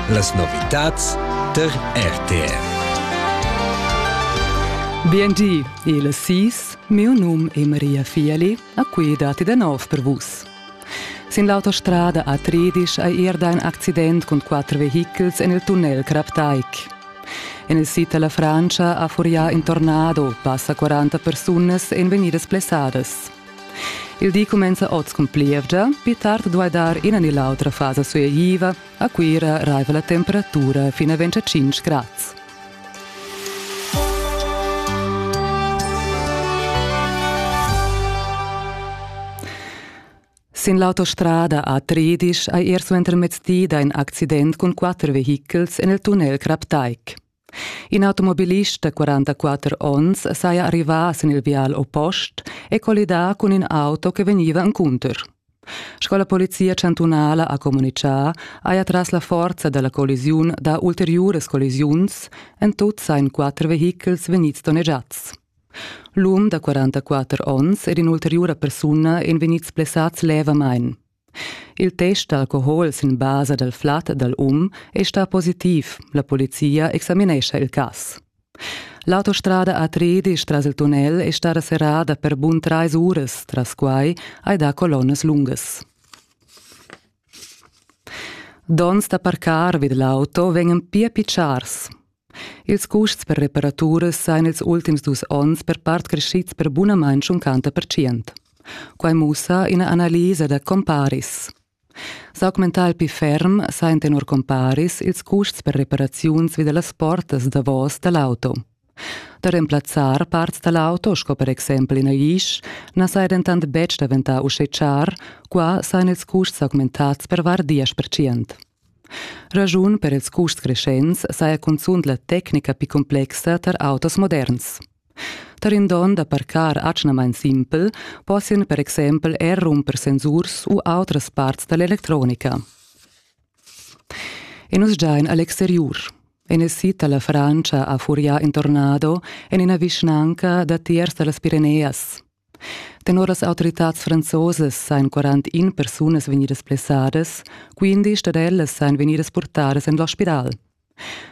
Las novitads tar RTR. Biendi, il sis, mio num è Maria Fieli, a cui dati da nov per vus. Sin l'autostrada a Tredisch è erda ein accident cun quatter vehichels en il tunnel Craptaik. En il sid della Francia ha furià in tornado, passa 40 persunas en venidas plessadas. Il di cumenza oz cun plievgia, pli tard duai dar ina ni l'autra fasa sueigliva. A Cuira raiva la temperatura fin a 25 grads. Sin l'autostrada a Tredisch hai er suentermezdi da in accident cun quatter vehichels en il tunnel Kraptaik. In automobilist da 44 onns saja arrivà sin il vial oppost e collidà cun in auto che vegniva encunter. Sco la polizia chantunala ha communitgà, haja tras la forza da la collisiun dà ulteriuras collisiuns, en tut sain quatter vehichels vegnids donnegiads. L'um da 44 onns ed in'ulteriura persuna èn vegnids blessads levamain. Il test d'alcohol sin basa dal flat dal um è stà positiv. La polizia examinescha il cas. L'autostrada A3 tras il tunnel è stata serrada per bun trais uras, tras quai hai dà colonnas lungas. Donns da parcar vid l'auto vegnan pia pitschars. Ils custs per reparaturas sajan ils ultims dus onns per part creschids per bunamain tschuncanta percient. Quai mussa ina analisa da comparis. S'augmentar pli ferm sajan tenor comparis ils custs per reparaziuns vi da las portas davos da l'auto. Da remplazzar parts da l'auto, sco per exempel ina isch, na saja dentant betg daventà uschè char, qua sajan ils custs augmentads per var diesch percent. Raschun per ils custs creschents saja cunzunt la tecnica pli complexa tar autos moderns. Tar in don da parcar atgnamain simpel possian per exempel er rumper sensurs u autras parts da l'electronica. E nus giain a l'exteriur. In il sid da la Francia ha furià in tornado en ina vischnanca da tiers da las Pireneas. Tenor las autoritads franzosas sajan 41 persunas vegnidas blessadas, quindisch dad ellas sajan vegnidas purtadas en l'ospital.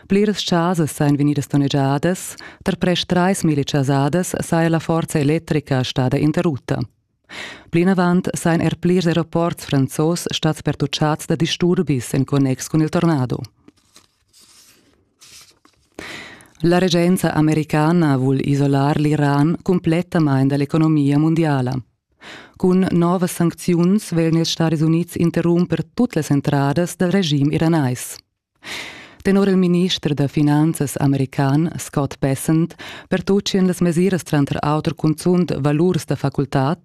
Pliras chasas sajan vegnidas donnegiadas, tar prest trais milli chasadas saja la forza electrica stada interrutta. Plinavant sajan er plirs aeroports franzos stads pertuccads da disturbis en connex cun il tornado. La regenza americana vul isolar l'Iran cumplettamain da l'economia mundiala. Cun novas sancziuns vegn ils Stadis Unids interrumper tut las entradas dal regim iranais. Tenor il minister da finanzas american Scott Bessent pertutgien las mesiras tranter auter cunzunt valurs da facultad,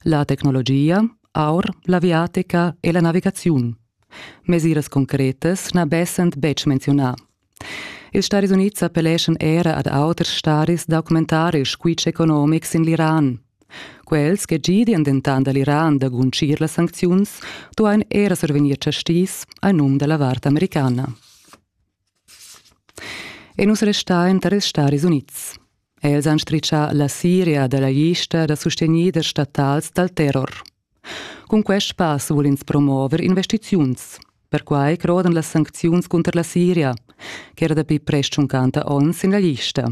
la tecnologia, aur, l'aviatica e la navigaziun. Mesiras concretas na dessent betg menziunà. Ils Stadis Unids appelleschan era ad auters stadis da documentar ils squitsch economics sin l'Iran. Quels che gidian dentant da l'Iran da guncir las sancziuns duain era survegnir chastis a num da la vart americana. E nus restain tar ils Stadis Unids. Els han stritschà la Siria da la lista da sustegnider statals dal terror. Cun quest pass vul ins promover investiziuns. Perquai crodan las sancziuns cunter la Siria, ch'era dapi prest tschuncanta onns en la lista.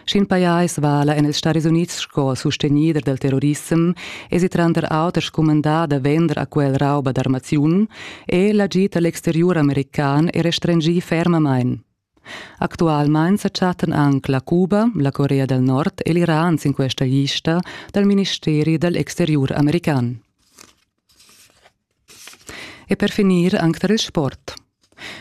Sch'in pajais vala en ils Stadis Unids sco sustenider dal terrorissem, èsi tranter auter scumandà da vender a quel rauba d'armaziun e l'agid a l'exteriur american è restringì fermamain. Actualmain sa chattan anc la Cuba, la Corea del Nord e l'Iran sin questa lista dal ministeri dal exteriur american. E per finir anche tar il sport.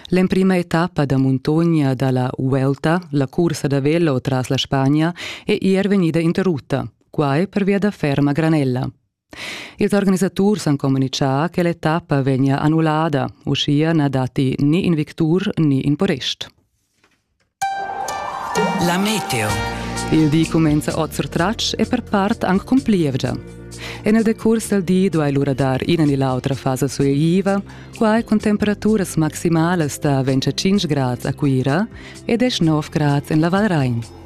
L'emprima etappa da muntogna dalla Vuelta, la cursa da velo tras la Spagna, è ier vegnida interrutta, quai per via da ferma granella. Ils organisaturs han communitgà che l'etappa vegnia annullada, uschia na datti ni in victur ni in porest. La meteo. Il di cumenza oz surtratg e per part anc cun plievgia. En il decurs dal di duai lura dar ina ni l'autra fasa sueiva, quai cun temperaturas maximalas da 25 grads a Cuira e 19 grads en la Val Rain.